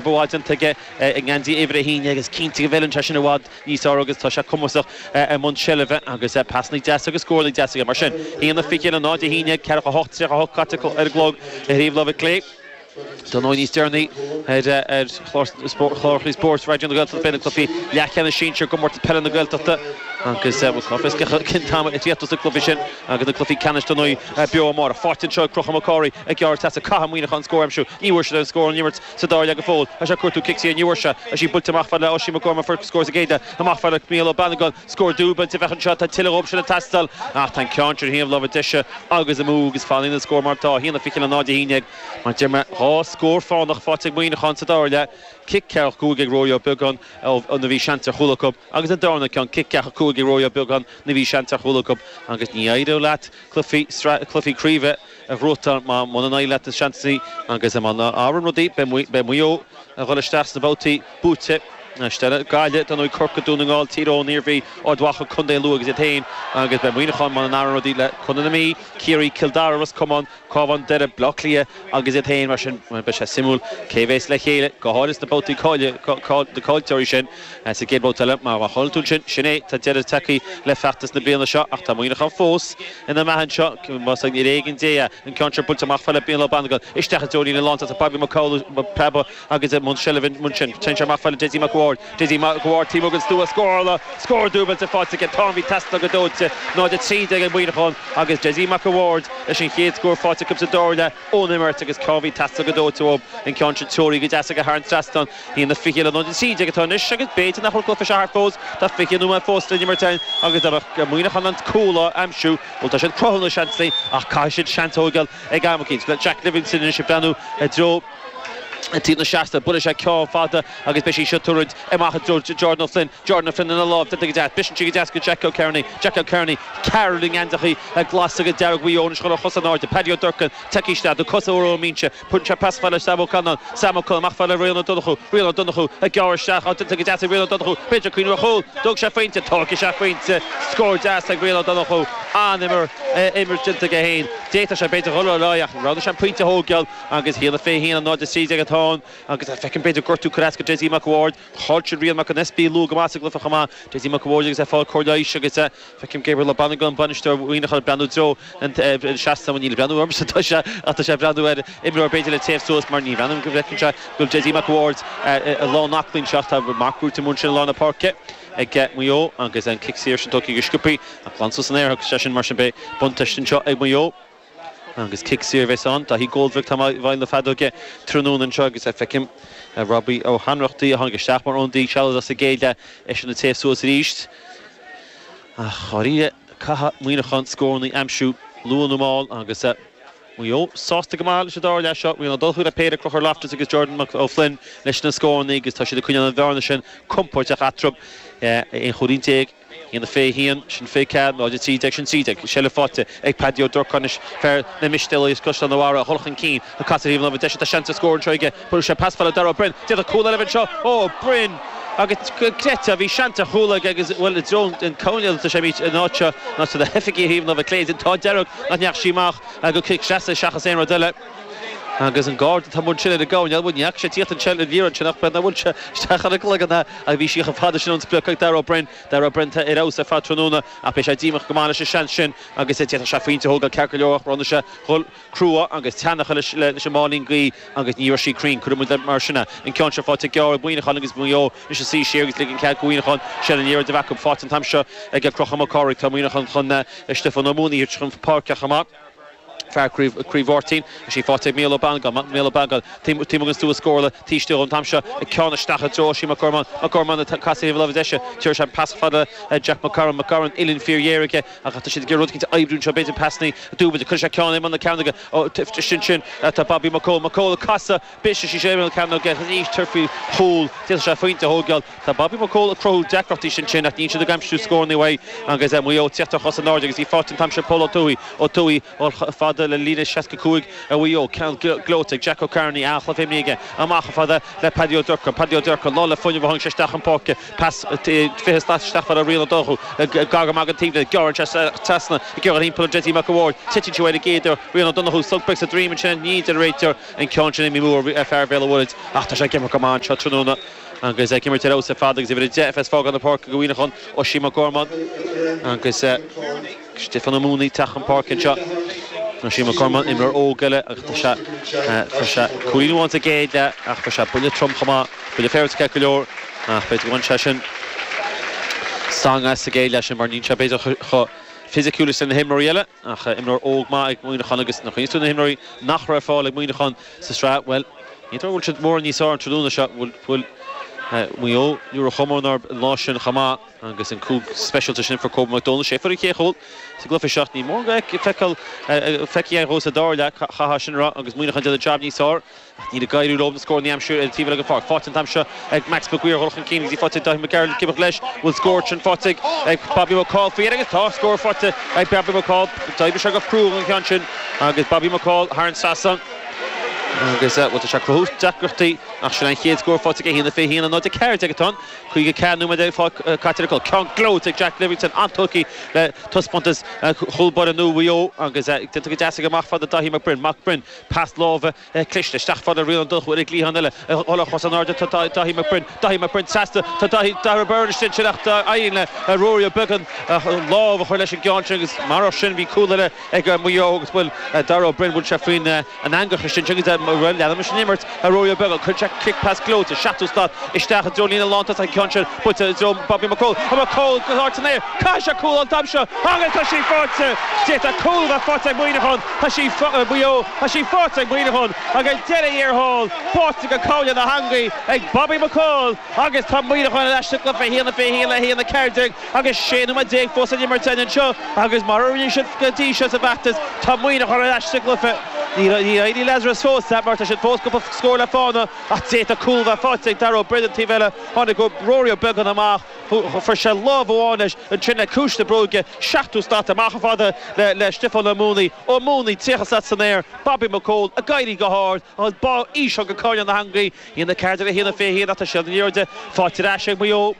bhfuil déanta aige i ngeansaí uimhir a haon déag agus cinnte go bhfeileann sé sin i bhfad níos fearr agus tá sé cumasach i mbun seilbhe agus pasanna deasa agus scóranna deasa aige mar sin. 21 0 11 48 38 caite ar an gclog i dtaobh láimhe clé Dar ndóigh níos deireanaí ar chlár spóirt Raidió na Gaeltachta beidh na cluichí leathcheannais sinsir i gComórtas Peile na Gaeltachta agus bhfuil corr fiosc acu cén t-am a thitfidh na cluichí sin agus na cluichí ceannais Dar ndóigh beo amárach. Faighte anseo ag Conchúr Mac Cárthaigh ag gearradh isteach caithfidh Muineachán scór a aimsiú ní bhfuair siad aon scór ón imirt sa dara leath go fóill agus é ag cuartú cic saor an uair seo agus í buailte amach fhad le Oisín McGorman fuair scór sa gcéad leath amach fhad le Micheál Ó Bannagáin scór dúbailt a bheadh anseo tá tuilleadh dhóibh sin ag teastáil ach tá an ceann sin ar thaobh láimhe deise agus amú agus fanann an scór mar atá 1-20 le 0-11 mar deir mé dhá scór fánach faighte ag Muineachán sa dara leath cic ceathracha cúig ag Rory Ó Beagáin nuair a bhí seans ar chúl acu agus an darna ceann cic ceathracha cúig ag Rory Ó Beagáin nuair a bhí seans ar chúl acu agus ní éireoidh leat cluichí craoibhe a bhuachtáil má muna n-éireoidh leat na seansanna sin agus mara n-athraíonn rudaí beidh Maigh Eo ag dhul isteach sna babhtaí buaite. isteach le Gaillimh, dar ndóigh, Corcaigh, Dún na nGall, Tír Eoghain, Iarmhí, Ard Mhacha, Co. Lú agus iad féin agus beidh Muineachán, mara n-athraíonn rudaí, le Contae na Mí, Ciarraí, Cill Dara, Ros Comáin, Cabhán, Doire, Baile Átha Cliath agus iad féin mar sin beidh sé suimiúil cé a bheas le chéile go háirithe sna babhtaí caillteoirí sin. Sa gcéad babhta eile, má chailleann tú ansin, sin é, tá deireadh tagtha le feachtas na bliana seo, ach tá Muineachán fós ina mbeatha anseo, más ar éigean Dé é, an ceann seo buailte amach fhad le Micheál Ó Bannagáin, isteach i dtreo líne na lántosach, tá Babaí Mac Amhlaigh, preabadh agus i mbun seilbhe ansin, téann sé amach fhad le Dessie Mac Uaird, Dessie Mac Uaird taobh amuigh den stua scórála, scór dúbailte faighte aige, ceann a bhí ag teastáil go dóite, 0:13 ag Muineachán agus Dessie Mac Uaird leis an chéad scór faighte acu sa dara leath ón imirt agus ceann a bhí ag teastáil go dóite uathu an ceann sin, treoraithe go deas aige thar an trasnán. A haon a fiche le náid a trí déag atá anois agus b'fhéidir nach bhfuil an cluife seo thart fós, tá fiche nóiméad fós le n-imirt ann agus dá mbeadh Muineachán in ann cúl a aimsiú. Bhuel tá siad ag cruthú na seansannaí ach caithfidh siad seans a thóigeáil ag am eicínt. Le Jack Livingstone anois ag breathnú i dtreo taobh na seasta, buailfidh sé ceann fada agus beidh sí seo ag tuirlingt amach i dtreo Jordan Ó Floinn. Jordan Ó Floinn ina lámh déanta go deas. Briseann sí go deas go Jack Ó Cearnaigh. Jack Ó Cearnaigh, ceathrar i ngeansachaí glas agus dearg Mhaigh Eo anois chun a chosa in airde. Paddy Ó Durcáin, tagtha isteach, na cosa úra ón mbinse. Tugann sé pas fhad le Sam Ó Callanáin, Sam Ó Callanáin, amach fhad le Rian Ó Donnchú, Rian Ó Donnchú ag gearradh isteach, á tiontú go deas ag Rian Ó Donnchú, b'fhéidir ag cuimhneamh ar chúl, tógfaidh sé a phointe, tógfaidh sé a phointe, scór deas ag Rian Ó Donnchú, an-imirt déanta aige féin, d'fhéadfadh sé b'fhéidir dhul ar aghaidh ach roghnaigh sé an pointe a thógáil agus 1-21 le 0-13 atá ann agus feicim b'fhéidir gortú curtha as go Dessie Mac a' Bhaird, chaill siad Rian Mac an Easpaig luath go maith sa gcluiche chomh maith, Dessie Mac a' Bhaird agus é ag fáil cóir leighis agus. Feicim Gabriel Ó Bannagáin, bainisteoir Mhuineacháin ag breathnú i dtreo an seasta, ní ag breathnú ormsa atá sé ach tá sé ag breathnú ar imreoir b'fhéidir le téamh suas mar ní bhreathnaím go bhfeiceann sé go bhfuil Dessie Mac a' Bhaird in ann leanacht anseo ach tá marc buaite ansin i lár na páirce ag Maigh Eo agus an cic saor sin tugtha go sciopthaí ach glan suas san aer agus sé sin mar sin beidh buntáiste anseo ag Maigh Eo. Agus cic saor a bheas ann. Daithí Coldrick atá i bhfeighil na feadóige tráthnóna anseo agus feicim Robbie Ó hAnrachtaigh a tháinig isteach mar ionadaí sealadach sa gcéad leath, eisean ag téamh suas arís. Ach dháiríre caithfidh Muineachán scóranna a aimsiú luath nó mall agus Maigh Eo sásta go maith sa dara leath seo. Bhí an dul chuig na péire Conchúr Loftus agus Jordan Ó Floinn leis na scóranna agus tá siad ag coinneáil an bhearna sin compóirteach eatarthu, 11 chúilín. 1, 21, sin 24, 0, 13, sin 13, seilbh faighte ag Paddy Ó Durcáin anois, fear na Mistéalaigh as Caisleán a' Bharraigh a dhul chun cinn ag casadh thaobh an láimhe deise, tá seans ar scór anseo aige, bhuail sé pas fada le Darragh Ó Broin, d'fhéadfadh cúl eile a bheith anseo, Ó Broin agus an gcreidfeá, bhí seans ar chúl aige agus, bhuel i dtreo an cúinne a d'fhan sé, bhí an áit seo, an áit seo na hoifigigh thaobh an láimhe clé, an t-ádh dearg nach ndeachaigh sí amach go cic sleasa seachas aon rud eile. Agus an Garda atá amuigh ansin ar an gcoirnéal, bhuel, ní fhaca sé tíocht ansin ar mhír ansin ach b'fhéidir nach bhfuil sé isteach ar an gcloigeann, a, a, bhí sí chomh fada sin ón sprioc ag Darragh Ó Broin, Darragh Ó Broin atá ar fheabhas ar fad tráthnóna ach beidh sé díomách go maith leis an seans sin agus d'fhéadfadh sé pointe a thógáil ceart go leor ach bronnadh sé, dhul, crua agus teannacha leis, leis an máilín gaoithe agus ní raibh sí cruinn, cuirfidh muid mar sin é. An ceann seo faighte gearr ag Muineachán agus Maigh Eo anois ag suí siar agus ligean cead go Mhuineachán, sin an oiread a bheadh faighte an t-am seo ag Conchúr Mac Cárthaigh. Tá Muineachán chun Stiofán Ó Maonaigh a thabhairt chun páirce chomh maith. fear Chraobh Mháirtín. Is é faighte ag Mícheál Ó Beannagáin, Mícheál Ó Beannagáin, taobh amuigh den stua scórála, taobh istigh an t-am seo, ag ceann isteach i dtreo Oisín Mac Gormáin, Mac Gormáin ag casadh thaobh a láimhe deise, tabharfaidh sé an pas fada le Jack McCarron, McCarron uillinn fíorghéar aige ach tá siad ag iarraidh rud eicínt a oibriú anseo, b'fhéidir pas ní dúbailte, cuirfidh sé ceann i mbun na cearnóige ansin tá Bobby McCaul, McCaul ag casadh. B'eisean sí Séamus Ó Cearnaigh agus an aois tir faoi chúl. D'fhéadfadh sé pointe a thógáil. Tá Bobby McCaul ag cruthú deacrachtaí ansin ach níl siad ag aimsiú scóranna uaidh agus Maigh Eo ag teacht ar cosa in airde agus í faighte an t-am sin Pól Ó Tuathaigh. Ó Tuathaigh dul chomh fada le líne 65 ar Mhaigh Eo. Ceann gleoite ag Jack Ó Cearnaigh. An-chluiche inniu aige. Amach chomh fada le Paddy Ó Durcan. Paddy Ó Durcan lán le fuinneamh a tháinig sé isteach chun páirce. Pas fiche slat isteach fada ar Rian Ó Donnchú. Gar go maith don taobhlíne. Gearrann sé trasna. Ag iarraidh thimpeall ar Dessie Mac a' Bhaird. Titeann sí uaidh ar an gcéad iarraidh. Rian Ó Donnchú sonc beag sa droim ansin ach ní den réiteoir. an ceann sin i mí Iúil ar fhear Bhéal an Mhuirthead ach tá sé ag imirt go maith anseo tráthnóna agus ag imirt ar fheabhas ar fad agus uimhir 10 a fhágann an páirc go Muineachán, Oisín Mac Gormáin agus Stiofán Ó Maonaigh teacht chun páirce anseo. Oisín Mac Gormáin, imreoir óg eile agus tá sé tá sé cúilín amháin sa gcéad leath ach thóg sé buille trom chomh maith, buille féaráilte ceart go leor ach b'fhéidir gur bhain sé sin stangadh as sa gcéad leath sin mar níl sé b'fhéidir chomh fisiciúil is na himreoirí eile. Ach imreoir óg maith ag Muineachán agus an chaint seo ar na himreoirí nach raibh ar fáil ag Muineachán sa tsraith, bhuel, ní dóigh go bhfuil siad mórán níos fearr an tráthnóna seo. Bhuail Maigh Eo New York chomh mór an lá sin chomh maith agus an cúl speisialta sin a fuair Kobe Mac Dónaill sé a fuair an chéad chúl sa gcluiche seo. Níl mórán de feicthe, feicthe fós sa dara leath, chaithfeá sin a rá, agus Muineachán déanamh jab níos fearr. Ach níl ag éirí leo na scóranna a aimsiú ar an taobh eile den pháirc. Faighte an t-am seo ag Max McGuire dhul chun cinn agus í faighte ag Dáithí Mac Gearailt cibeadh leis. An bhfuil scór ansin faighte ag Bobby McCaul faoi dheireadh? Agus tá scór faighte ag Bobby McCaul. D'oibrigh sé go crua don cheann sin agus Bobby McCaul thar an trasnán agus, bhuel, tá sé ag cruthú deacrachtaí ach sin é an chéad scór faighte aige. 1:21.14 atá ann. 54 nóiméad ar fad caite ar an gclog. Ceann gleoite ag Jack Livingstone, an-tógtha le taispeántas chúl báire nua Mhaigh Eo agus déanta go deas aige amach fad le Dáithí Mac Broin. Mac Broin. Pas láimhe cliste isteach fad le Rian Ó Donnchú, an cliathán eile a dhul ar cosa in airde. Tá Dáithí Mac Broin, Dáithí Mac Broin trasna. Tá Dáithí, Dara Beirne istigh ansin ach éiríonn le Ruairí Ó Beagáin lámh a chur leis an gceann sin agus marach sin bhí cúl eile ag Maigh Eo agus bhuel Dara Ó Broin bhuail sé faoin eangach istigh ansin agus rud a leanamar sin imirt. Ruairí Ó Beagáin, cuir isteach cic pas gleoite, seachtú slat isteach i dtreo líne lántosaigh an ceann sin, buailte i dtreo Bobby McCaul, McCaul go hard san aer, caithfidh sé cúl a fháil an t-am seo agus tá sí faighte! D'fhéadfadh cúl a bheith faighte ag Muineachán, tá sí, Mhaigh Eo, tá sí faighte ag Muineachán ach ag deireadh thiar thall, báite go cúl na heangaí ag Bobby McCaul agus tá Muineachán ar ais sa gcluiche, 1 a 21 le 1 14. Agus 16 nóiméad fós le n-imirt anseo agus mar a rinne siad go dtí seo sa bhfeachtas, tá Muineachán ar ais sa gcluiche. Níor éirigh Lazarus fós leat mar tá siad fós cúpla scór le fána ach d'fhéadfadh cúl a bheith faighte ag Dara Ó Broin an taobh eile. Tháinig Rory Ó Beagáin amach, fuair sé lámh amháin leis ansin le ciumhais na bróige, seachtú slat amach fad le Stiofán Ó Maonaí, Ó Maonaí 30 slat san aer, Bobby McCaul ag éirí go hard agus bá íseal go coirnéal na heangaí. A haon a ceathair déag le a haon a fiche a haon ach tá siad in airde. Faighte ar ais ag Maigh Eo.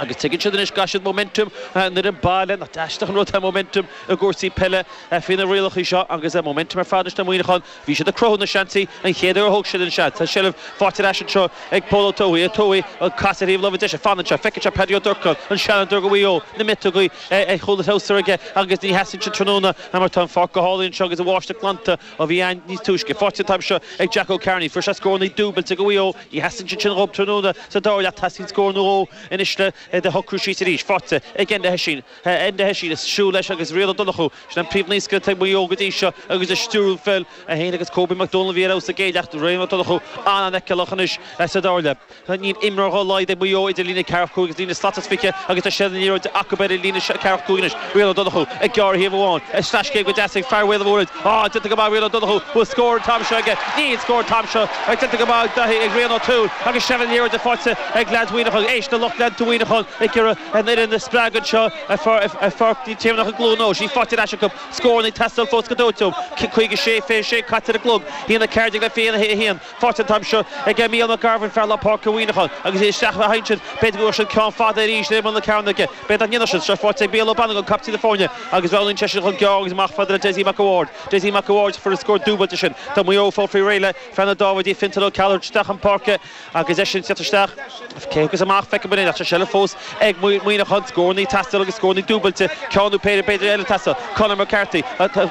Agus tuigeann siad anois go gcaithfidh siad momentum an fhoireann baile, nach aisteach an rud é momentum i gcúrsaí peile faoi na rialacha seo, agus momentum ar fad anois le Muineachán. Bhí siad ag cruthú na seansanna an chéad uair a thóg siad an seans. Tá seilbh faighte ar ais anseo ag Pól Ó Tuathaigh. Ó Tuathaigh, an pas ar thaobh láimhe deise, fanann sé, feiceann sé Paddy Ó Durcáin, an seanfhondúir do Mhaigh Eo, na miotógaí ar chúl a threabhsair aige agus ní theastaíonn siad tráthnóna mar tá an pháirc go hálainn anseo agus an bháisteach glanta. a bhí ann níos túisce. Faighte an t-am seo ag Jack Ó Cearnaigh. Fuair sé scórannaí dúbailte do Mhaigh Eo. Ní theastaíonn siad sin dhóibh tráthnóna sa dara leath ach teastaíonn scór nó dhó anois le iad a shocrú síos arís. Faighte ag Enda Hession. Enda Hession ag siúl leis agus Rian Ó Donnchú. Sin an príomhnaoscaire ag Maigh Eo go dtí seo agus ag stiúradh peil. É féin agus Kobe McDonald a bhí ar fheabhas sa gcéad leath Rian Ó Donnchú an-fheiceálach anois sa dara leath. Níl imreoir dhá laghad ag Maigh Eo idir líne a ceathracha cúig agus líne slat is fiche agus tá seilbh na liathróide acu ar líne a ceathracha cúig anois. Rian Ó Donnchú ag gearradh thaobh amháin, sleaschéim go deas ag fear Bhéal an Mhuirthead. Á, déanta go maith Rian Ó Donnchú, bhfuil scór an t-am seo aige? Níl scór an t-am seo ach déanta go maith ag Rian O'Toole agus seilbh na liathróide faighte ag leaids Mhuineacháin. Éist le lucht leanta Mhuineacháin ag iarraidh an fhoireann a spreagadh anseo ar Pháirc Naomh Tiarnach i gCluain Eois. Í faighte ar ais acu, scóranna ag teastáil fós go dóite uathu. 56, 26 caite ar an gclog, a haon a ceathair déag le 21. Faighte an t-am seo ag Mícheál McCarville fear lár páirce Mhuineacháin agus iad isteach le hInsint. B'fhéidir go bhfuil siad ceann fada arís le imeall na cearnóige. B'fhéidir nach ndéanfadh siad seo. Faighte ag Mícheál Ó Banagáin, captaen na foirne, agus roghnaíonn seisean ceann gearr agus amach chomh fada le Dessie Mac a' Bhaird. Dessie Mac a' Bhaird fuair an scór dúbailte sin. Tá Maigh Eo ag fáil faoi réir le fear na Dáibhidí, Fiontán Ó Ceallaigh, a thabhairt isteach chun páirce agus eisean ag tíocht isteach. Cé agus amach, feicim in aon eachtra seilbh fós ag Muineachán, scórannaí ag teastáil agus scórannaí dúbailte, ceann nó péire b'fhéidir eile ag teastáil. Conor McCarthy,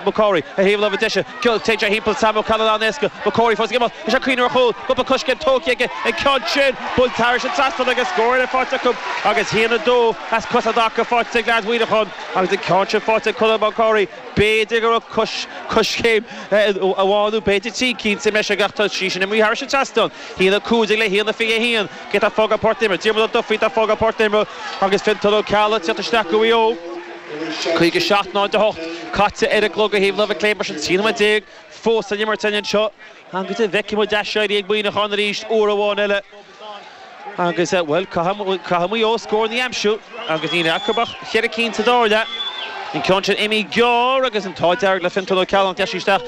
McCarthy, ar thaobh láimhe deise, téann timpeall Sam Callinan éasca, McCarthy fós ag imeacht, is é ag cuimhneamh ar chúl, an iomarca coiscéim tógtha aige an ceann sin, imithe thar an trasnán agus scór eile faighte acu agus haon a dó as cosa i dtaca faighte ag leaids Mhuineacháin agus an ceann sin faighte ag Conor McCarthy. B'fhéidir go raibh coiscéim amháin nó b'fhéidir trí cinn sa mbreis aige ach tá sí sin imithe thar an trasnán, Haon a cúig déag le haon a fiche a haon, cé tá ag fágáil páirc na himeartha, Diarmuid Ó Dufaigh atá ag fágáil páirc na himeartha agus Fiontán Ó Ceallaigh ag teacht isteach do Mhaigh Eo. Caoga seacht nóiméad a hocht caite ar an gclog ar thaobh láimhe clé mar sin trí nóiméad déag fós san imirt againn anseo agus an bhfeicfidh muid aiséirí ag Muineachán arís uair amháin eile agus, bhuel, caithfidh Maigh Eo scóranna a aimsiú agus níl acu ach ceithre cinn sa dara leath. An ceann sin imithe gearr agus an t-ádh dearg le Fiontán Ó Ceallaigh nach ndeachaigh sé isteach.